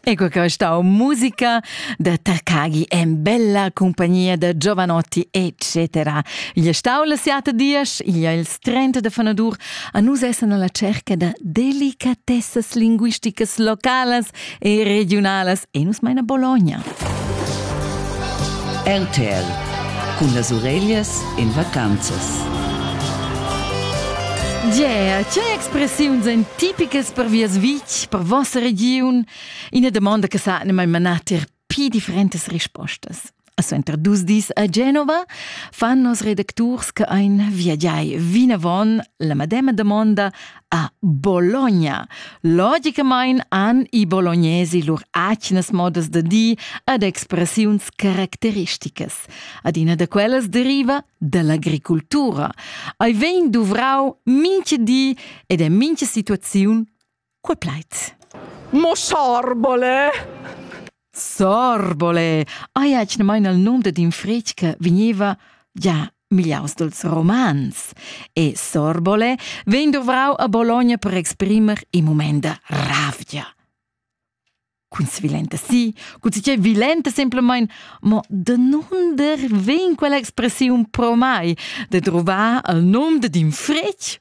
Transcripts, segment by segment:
Ecco che stau musica da Takagi en bella compagnia da giovanotti eccetera. Gli stau la siata dias, igl è il 30 de fanadur, a nus essan alla cerca da delicatessas linguisticas localas e regionalas e nus meina Bologna. RTL cun las ureglias en vacanzas. Yeah, tge expressiuns èn tipicas per Vias Vic, per vossa regiun? Ina domanda che sa ne mai manà ter pi differentas rispostas. Suenter dus dis a Genova fan nos redacturs che ein viagiai vinavon la medema domanda a Bologna. Logicamain han i bolognesi lur atgnas modas da dir ed expressiuns caracteristicas. Adina da quellas deriva da l'agricultura. Ei vegn duvrau mincha di ed en mincha situaziun qua plait. Mo sciarbole! Sorbole! Aia che ne maina il nom dad in fritg che vegniva già migliaus dals romans. E Sorbole vegn dovrau a Bologna per exprimer in moment da ravgia. Cun svilenta sì, cun sice vilenta semplamein, mo danunder vegn quella expressiun pro mai de trovar il nom dad in fritg?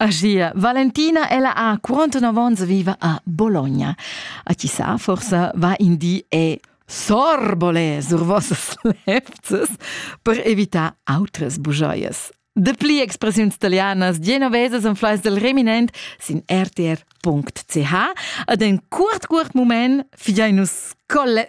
Agia, Valentina ella ha 49 onns viva a Bologna. A chi sa, forsa va in di e sorbole sur vossas lefzes per evitar autres bujoias. De pli expressiuns italianas genovesas en fleiss del reminent sin rtr.ch ad en curt curt moment figiai nus colle